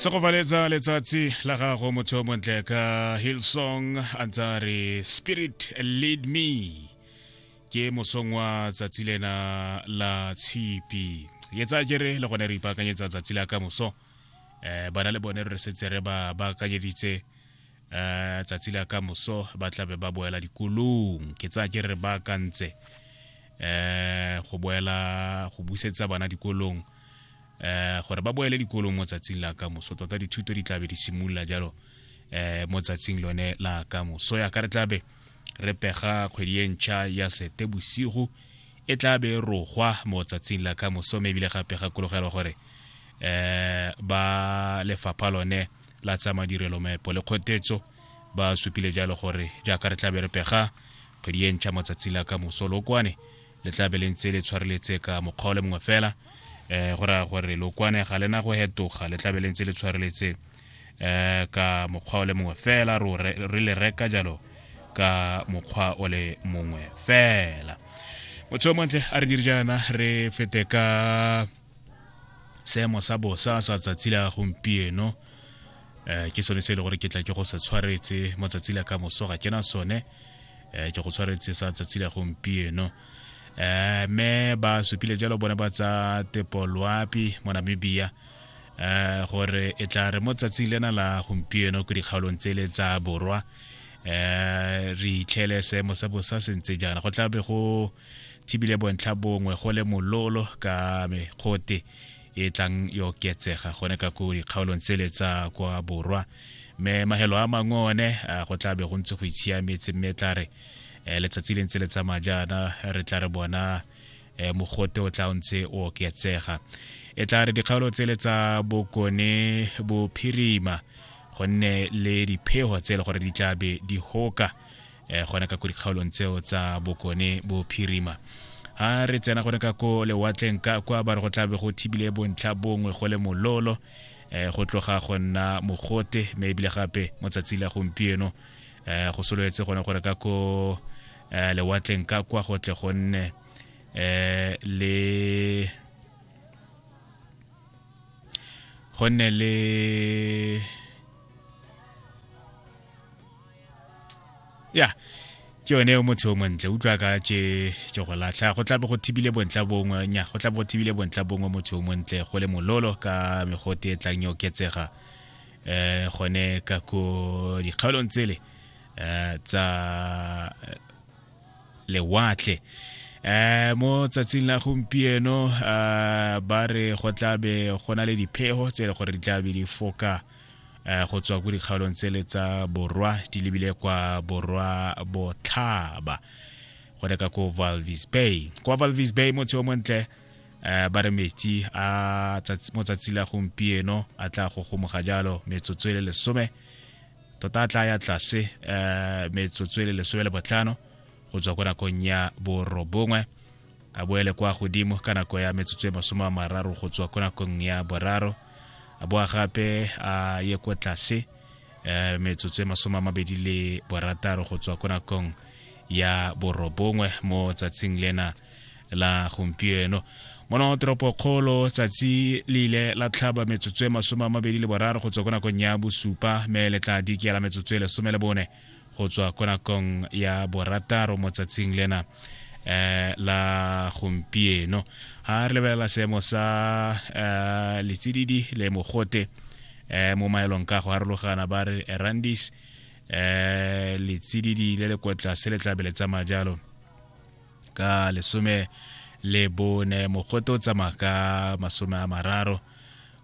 se go valetsa letsatsi la gago motho o montle ka hillsong a ntse a re spirit lead me ke mosong wa tsatsi lena la tshipi ke tsa ke re le gone re ipaakanyetsa tsatsi la ka moso um bana le bone re setse re ba baakanyeditse um tsatsi la ka moso ba tlabe ba boela dikolong ke tsaya ke re ba kantse um go boela go busetsa bana dikolong um gore ba boele dikolong mo tsatsing la ka moso tota dithuto di tlabe di simolola jalo um mo tsatsing lone la ka moso ya ka re tlabe re pega kgwedi e ntšha ya sete bosigo e tla be rogwa mo tsatsing la ka mosome ebile gape gakologelwa gore um ba lefapha lone la tsa madirelo maepo le kgotetso ba supile jalo gore jaaka re tlabe re pega kgwedi e ntšha mo tsatsi la ka moso lokwane le tlabe le ntse le tshwareletse ka mokgwa o le mongwe fela um go raya gore lokwane ga lena go hetoga le tlabe le ntse le tshwareletse um ka mokgwa o le mongwe fela re le reka jalo ka mokgwa o le mongwe fela motho o montle a re dire jaana re fete ka seemo sa bosa sa tsatsi la gompieno um ke sone se e le gore ke tla ke go se tshwaretse mo tsatsi la ka moso ga ke na sone um ke go tshwaretse sa tsatsi la gompieno um mme ba supile jalo bone ba tsa tepoloapi mo namibia um gore e tla re mo tsatsing lena la gompieno ko dikgaolong tsele tsa borwa um re itlhele seemo sa bosa se ntse jaana go tla be go thibile bontlha bongwe go le mololo ka mekgote e tlang yo oketsega gone ka ko dikgaolong tsele tsa kwa borwa mme magelo a mangwe one go tla be go ntse go itshiametse mme e tla re eh, letsatsi le ntse le tsamaya jaana re tla re bona eh, mogote o tla o ntse o oketsega e tla re dikgaolo tsele tsa bokone bophirima gonne le diphego tse e le gore di tla be di hoka eh, gona ka ko dikgaolong tseo tsa bokone bophirima a re tsena gone ka ko lewatleng ka kwa ba re go tlabe go thibile bontlha bongwe go le mololo um go tloga go nna mogote mme ebile gape mo tsatsi la gompieno um go sololetse gone gore ka ko um lewatleng ka kwa go tle go nne um le go nne le ya yeah. ke yone yo motho o montle utlwa ka ke ke go latlha go tlabe go thibile bontla bongwe nya go tlabe go thibile bontla bongwe motho o montle go le mololo ka megote e tlang yo oketsega eh gone ka ko dikgaolong tsele eh tsa eh, lewatle eh mo tsatsing la gompieno eh, ba re go tlabe go na le diphego tse e le gore di tlabe di foka eh eh, go tswa ko dikgaolong tsele tsa borwa di lebile kwa borwa botlhaba go reka ko valvis bay kwa valvis bay motse o montle um ba re metsi a mo tsatsi la gompieno a tla go gomoga jalo metsotso e le lesome tota a tla ya tlase um metsotso e le lesome le botlhano go tswa ko nakong ya borobongwe a boele kwa godimo ka nako ya metsotso e masome a mararo go tswa ko nakong ya boraro a boa gape a ye kwa tlase um metsotso e masome a mabedi le borataro go tswa ko nakong ya borobongwe mo tsatsing lena la gompieno mono toropokgolo tsatsi le ile la tlhaba metsotso e masome a mabedi le boraro go tswa ko nakong ya bosupa me le tla dikiela metsotso e lesome le bone go tswa ko nakong ya borataro mo tsatsing lena eh la gompieno ha re lebelela seemo sa eh, letsididi le mogote eh mo maelong ka go harologana ba re erandis eh letsididi le le kwa tlase le tlabe le tsamaya jalo ka lesome le bone mogote o tsamaya ka masome a mararo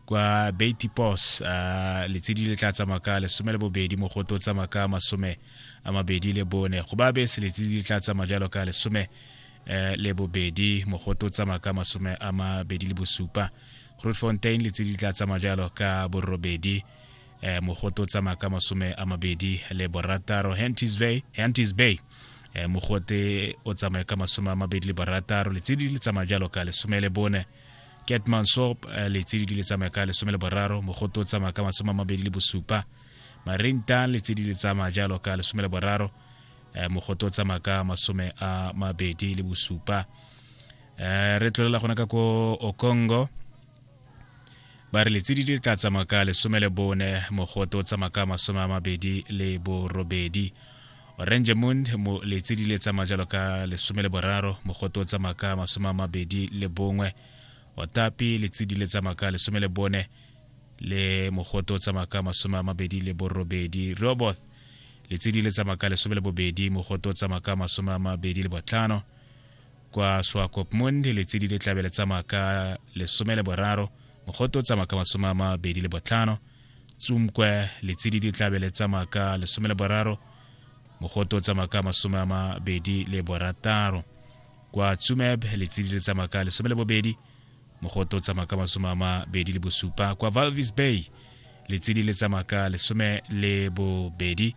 kwa Betty Pos uh, letshedi le tla tsamaya ka lesome le bobedi mogote o tsamaya ka masome a mabedi le bone go ba bese letshedi le tla tsamaya jalo ka lesome eh, le bobedi mogote o tsamaya ka masome a mabedi le bosupa grootfontein letshedi le tla tsamaya jalo ka borobedi eh, mogote o tsamaya ka masome a mabedi le borataro hantis bay, hantis bay eh, mogote o tsamaya ka masome a mabedi le borataro letshedi le tsamaya jalo ka lesome le bone ketmansop eh, letshedi le tsamaya ka lesome le boraro mogote o tsamaya ka masome a mabedi le bosupa marinta letshedi le tsamaya jalo ka lesome le boraro eh, mogote o tsamaya ka masome a mabedi le bosupa eh, re tlolela gona ka ko okongo ba re letsedi di tla tsamaya ka lesome le bone mogote o tsamaya ka masome a mabedi le borobedi orange moon mo letsedi le tsamaya jalo ka lesome le boraro mogote o tsamaya ka masome a mabedi le bongwe otapi letsedi le tsamaya ka lesome le bone le mogote o tsamaya ka masome a mabedi le borobedi roboth letsedi le tsamaya ka lesome le bobedi mogote o tsamaya ka masome a mabedi le botlhano kwa swakopmund letsedi le tlabe le tsamaya ka lesome le boraro mogote o tsamaya ka masome a mabedi le botlhano tsumkwe letsedi le tlabe le tsamaya ka lesome le boraro mogote o tsamaya ka masome a mabedi le borataro kwa tsumeb letsedi le tsamaya ka lesome le bobedi mogote o tsamaya ka masome a mabedi le bosupa kwa valvis bay letsedi le tsamaya ka lesome le bobedi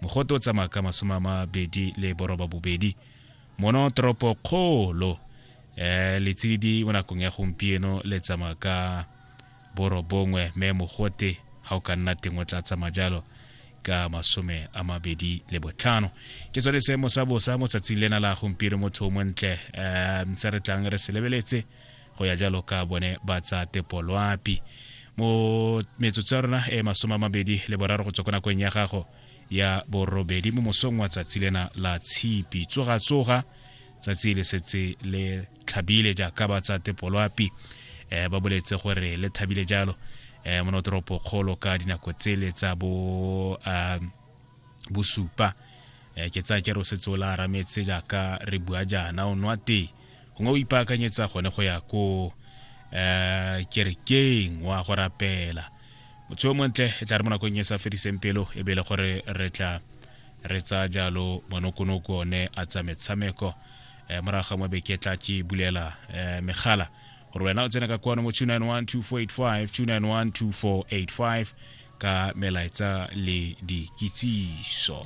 mogote o tsamaya ka masome a mabedi le boroba bobedi mono toropo kgolo um eh, letsididi mo nakong ya gompieno le tsamaya ka borobongwe me mogote ga o ka nna teng o tla tsamaya jalo ka masome a mabedi le botlhano ke sone se mosabosa mo tsatsing lena la gompieno motho o montle um se re tlang re se lebeletse go ya jalo ka bone ba tsa tepoloapi mo metsotso ya rona e masome a mabedi le boraro go tswa ko nakong ya gago ya borobedi mo mosong wa tsatsi lena la tshipi tsogatsoga tsatsi le setse le tlhabile jaaka ba tsa tepoloapi um eh, ba boletse gore le thabile jalo um mo notoropo kgolo ka dinako tsele tsa bo um bosupa um ke tsaya ke re o setse o la arametse jaaka re bua jaana o nwa tee gongwe o ipaakanyetsa gone go ya ko um kerekeng wa go rapela motho yo montle e tla re mo nakong e sa fediseng pelo e bele gore re tla re tsaya jalo monokonoko one a tsa metshameko um morago ga mo beke tla ke bulela um megala gore wena o tsena ka kwano mo 2912485 ka melaetsa le dikitsiso